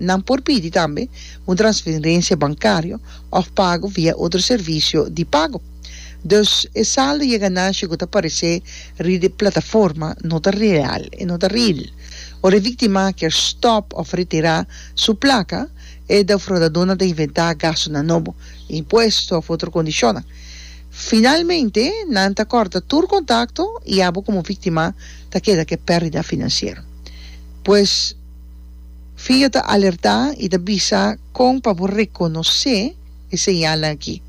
Nan por pidi tambe un transferencia bancario of pago via otro servicio di pago. Dus e saldo y e ganancia cu ta parece riba e plataforma no ta real, e no ta ril. Ora e victima kier stop of retira su placa, e defraudadonan ta inventa gastonan nobo, impuesto of otro condicionnan. Finalmente nan ta corta tur contacto y abo como victima ta keda cu e perdida financiero. Pues. Fia ta alertá i ta bisa kon pa bo rekonosé e señalnan akí.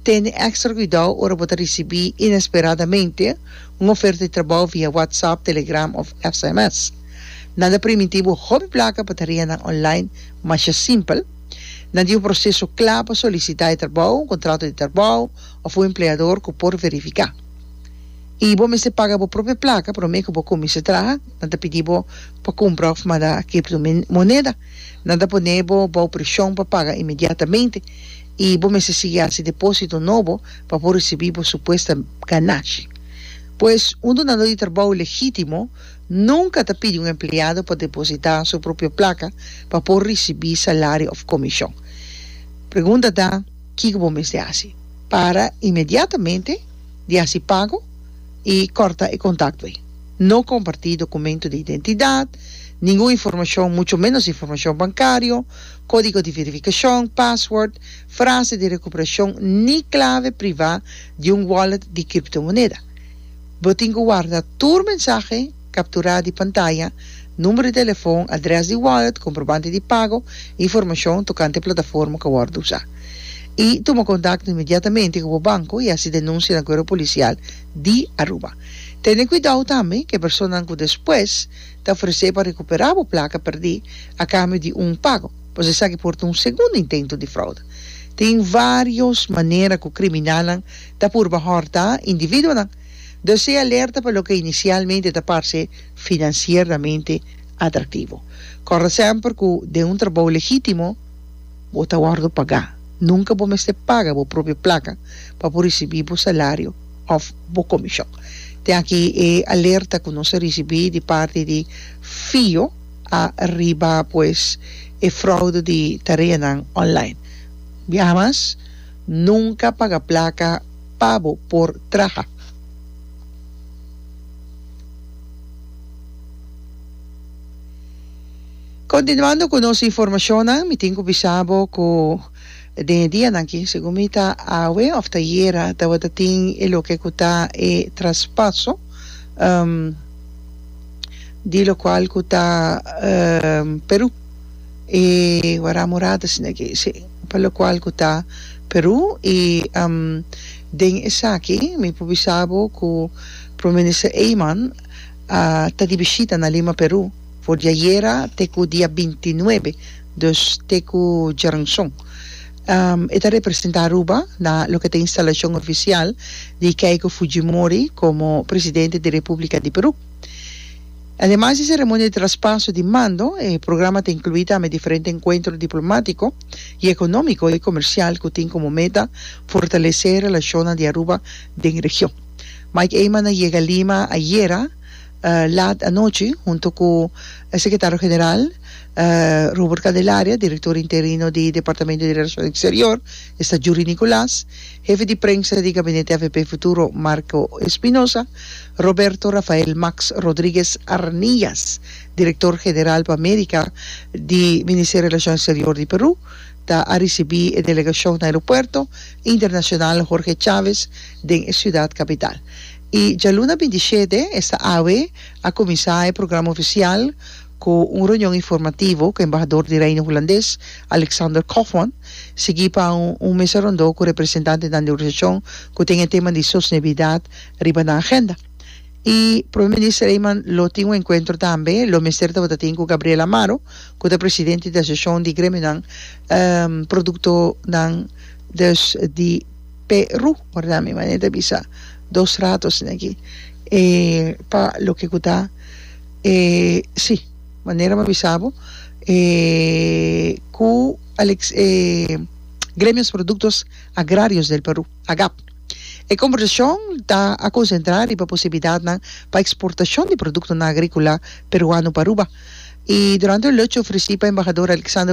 Tene èkstra kuidou ora bo ta risibí inesperadamente un oferta di trabou via WhatsApp, Telegram òf sms. Nan ta primintí bo hopi plaka pa tareanan online masha simpel. Nan tin un proseso kla pa solisitá e trabou, un kontrato di trabou òf un empleador ku por verifiká. I bo mester paga bo propio plaka promé ku bo kuminsá traha. Nan ta pidi bo Pa cumpra of manda criptomoneda, nan ta pone bo bao presion pa paga inmediatamente y bo mester sigui haci deposito nobo pa por ricibi bo supuesta ganashi. Pues, un donando di trabao legitimo nunca ta pidi un empleado pa deposita su propio placa pa por ricibi salario of comision. Pregunta ta, kico bo mester haci? Para inmediatamente di haci pago y corta e contacto ey. No comparti documento di identidad, ningun informacion, mucho menos informacion bancario, codigo di verificacion, password, frase di recuperacion ni clave priva di un wallet di criptomoneda. Bo tin cu warda tur mensahe captura di pantaya, numero di telefon, adres di wallet, comprobante di pago, informacion tocante plataforma ca wordo usa. Y tuma contacto inmediatamente cu bo banco y haci denuncia na Cuerpo Policial di Aruba. Tene cuidao tambe cu e personanan cu despues ta ofrece pa recupera bo placa perdi a cambio di un pago, pues esaki por ta un segundo intento di fraude. Tin varios manera cu criminalnan ta purba horta individuonan, dus sea alerta pa loke inicialmente ta parce financieramente atractivo. Corda semper cu den un trabao legitimo bo ta wordo paga. Nunca bo mester paga bo propio placa pa por ricibi bo salario. òf bo komishon. Tin aki e alerta ku nos a risibí di parti di Fio a riba pues e fraude di tareanan online. Biaha mas, nunka paga plaka pa bo por traha. Kontinuando ku nos informashonnan mi tin ku bisa bo ku. Den e dianan ki, segun mi ta awe of ta yera tabata tin e loke ku ta e traspaso di lo kual ku ta Peru, e Wara Morada sino ke si, pa lo kual ku ta Peru i den esaki mi por bisa bo ku Prome Minister Eman a ta di bishita na Lima Peru for di ayera te ku dia binti nuebe Dus te ku djeranson. E ta representá Aruba na loke ta instalashon ofisial di Keiko Fujimori komo presidente di Repúblika di Perú. Ademas di seremonia di traspaso di mando, e programa ta inkluí tambe diferente enkuentro diplomátiko i ekonómiko i komersial ku tin komo meta fortalesé relashonnan di Aruba den region. Mike Eman a yega Lima ayera lat anochi hunto ku Sekretario General Robert Candelaria, direktor interino di Departamento di Relashon Eksterior, esta Jury Nicolas, hefe di prensa di Gabinete AVP Futuro, Marco Espinosa, Roberto Rafael Max Rodriguez Arnillas, direktor general pa Amerika di Ministerio di Relashon Eksterior di Peru, ta a risibí e delegashon na Aeropuerto Internashonal Jorge Chávez den e siudat kapital. I djaluna binti shete esta awe a kuminsá e programa ofisial, Ku un reunion informativo ku embahador di Reino Hulandes, Alexander Koffmann, sigui pa un mesa rondó ku representantenan di organisashon ku tin e tema di sostenibilidat riba nan agenda. I Prome Minister Eman lo tin un enkuentro tambe, lo mester tabata tin ku Gabriel Amaro, ku ta presidente di Asosiashon di Gremionan Produktonan dus di Peru. Wardá mi manera di bisa dos rato asina aki, e pa loke ku ta. E si, manera m'a bisa bo, e ku Alex e Gremios Produktos Agrarios del Peru, AGAP. E kombersashon ta a konsentrá riba posibilidatnan pa eksportashon di produktonan agríkola peruano pa Aruba, i durante un lunch ofresí pa Embahador Alexander.